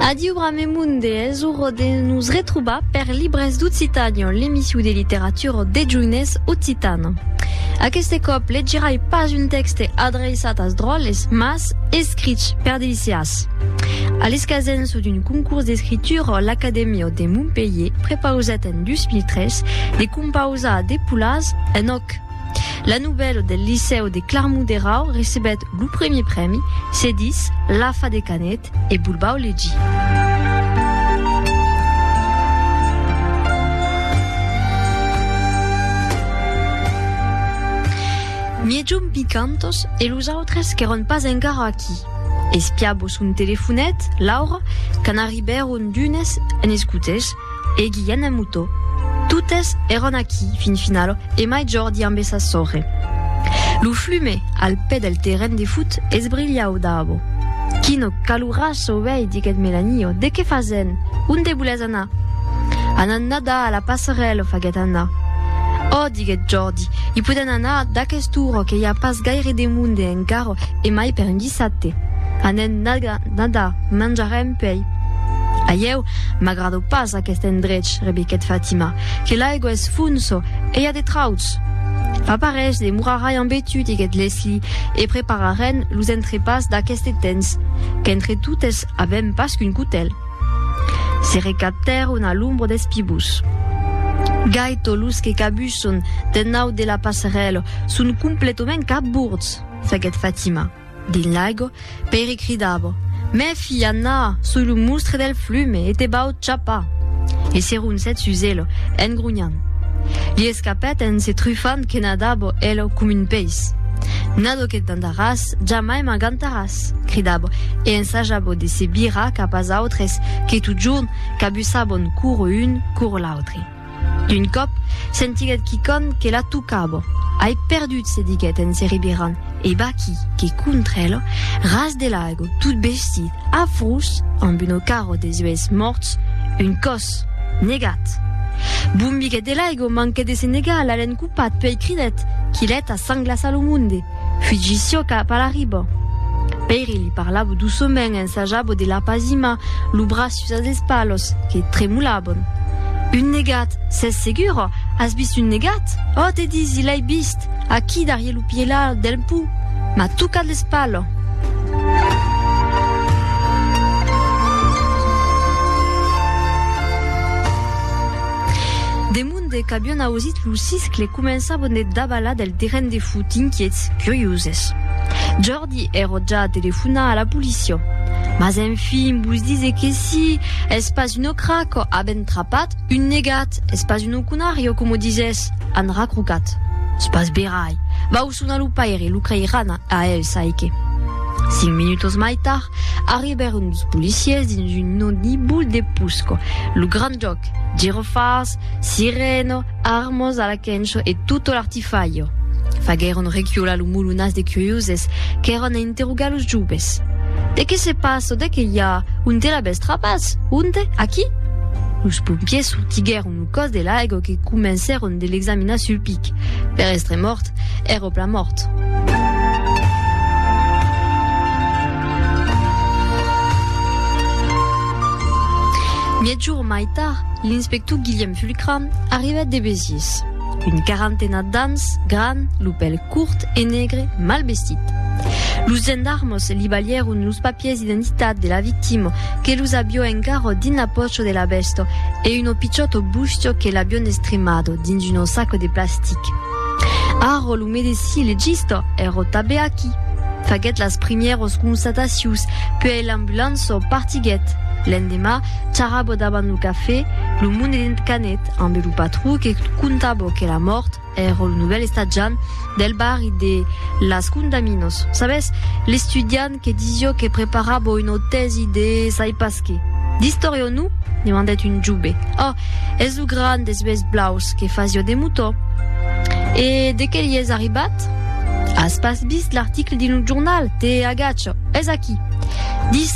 Adiu Bramemun de hèsor de nos retrobar per Libres d'Occitània, l'emission de literatura deth joines occitan. Aqueste còp legirai pas un tèxte adreiçat as dròlles, mas escrich per de liceàs. A l'escasença d'un concurs d'escritura, l'Acadèmia de Montpelhier prepausèt en 2003 de compausar de polàs en òc. La novèla del Licèu de Clarmont-Derau recebèt lo primièr prèmi, se dis La fa de Canet e Bulbau Legi. Miejum picantos e los autres qu'èron pas encara aquí. Espiabo son telefonet, Laura, quand arribèron d'unes en escotèls, e Guilhen en motò. Totes èran aquí, fin final, e mai Jordi ambe sa sòrre. Lo flume, al pè del terren de fut, esbrilhau dabo. Quino calurasso, uèi, diguèt Melanio, de qué fasen? Onde volètz anar? Anam nadar a la passerèla, faguèt Anna. Ò, diguèt Jordi, i podèn anar d'aquest ora que i a pas gaire de monde encara e mai per un dissabte. Anèm nadar, manjarem puèi. Aieu, M'agrado pas aquest endrech, rebiquèt Fatima, que l'aigua es fonso e i a de trauts. Fa parelhs de morarai ambe tu, diguèt Leslie, e prepararèn los entrepàs d'aqueste temps, qu'entre totes avèm pas qu'un cotèl. Se recaptèron a l'ombra des pibús. Gai tot los que cabusson d'ennaut de la passarèla son completament cabords, faguèt Fatima. Dins l'aigo, Peri cridava, Mèfi, Anna, soi lo mustre del flume e te vau chapar! E se roncèt sus elo, en gronhant. Li escapèt en se trufant que nadava elo com un peis. Nado que t'andaràs, jamai m'agantaràs! cridava e ensajava de se virar cap as autres que totjorn cabussavon coro un, coro l'autre. D'un còp, sentiguèt quicòm que la tocava. Ai perdut, se diguèt en se ribirant, e vaquí que contra ela, ras de l'aiga, tot bestit, afrós, amb una cara de zuèths mòrts, un còs! Negat! Bombiguèt de l'aiga, manquèt de se negar, l'alèn copat, puèi cridèt, Quilèt a sang glaçar lo monde! Fugi çò cap a la riba. Pèiri li parlava doçament, ensajava de l'apazimar, lo braç. Tusas dels palos que tremolaban. Un negat, s'es segura? As vist un negat? Oh, te disi, l'ai vist, aquí darrier lo pièla del pù. M'a tocat l'espala. Demunde qu'avion ausit lo siscle, començavan de davalar del terren de fut, inquiets, curioses. Di ero ja telefonar a la policia. Mas enfin vos dise que si, es pas un ocraco, avèn trapat un negat, es pas un ocunario, coma disès, an racrocat. Es pas verai. Vau sonar lo paire, lo creiran a el, sai que. Cinc minutos mai tard, arribèron dos policiers dins un nodibul de pusco. Lo grand jòc, girofars, sirena, Armos a la quencho e tutto l'artifaio. Faguèron requiolar lo mulunas de curioses qu'èron a interrogar los joves. De qué se passa? De qué i a? Onte l'avètz trapàs? Onte? Aquí? Los pompiers sortiguèron lo còs de l'aigo que comencèron de l'examinar sul pic. Per èstre mòrt, èra plan mòrt. Miègjorn mai tard, l'inspector Guilhèm Fulquier, Cram arribèt de Besiés. Un quarantena d'ans, gran, lo pèl curt e negre, mal vestit. Los gendarmes li balhèron los papiers d'identitat de la victima, que los avió encara dins la pòcha de la bèsta, e un opiciòt bustio que l'avión estremado dins un sac de plastic. Arro lo medecin legista ero tabé aquí. Faguet las primièros constatacius, puèi l'ambulanço partiguet. L'endemà, charabo davant lo cafè, lo monedent Canet, ambe lo patron que contabo que la mòrt ero lo novèl estatjant del barri de Las Condaminos, sabes, l'estudiant, Que disio que preparabo un otèsi de sai pas que. D'istòria o non? demandèt un jove. Ò, es lo gran des uèlhs blaus que fasio de motò. E de qué l'i es arribat? As pas vist l'article dins lo jornal? Te agacho, es aquí. Dis.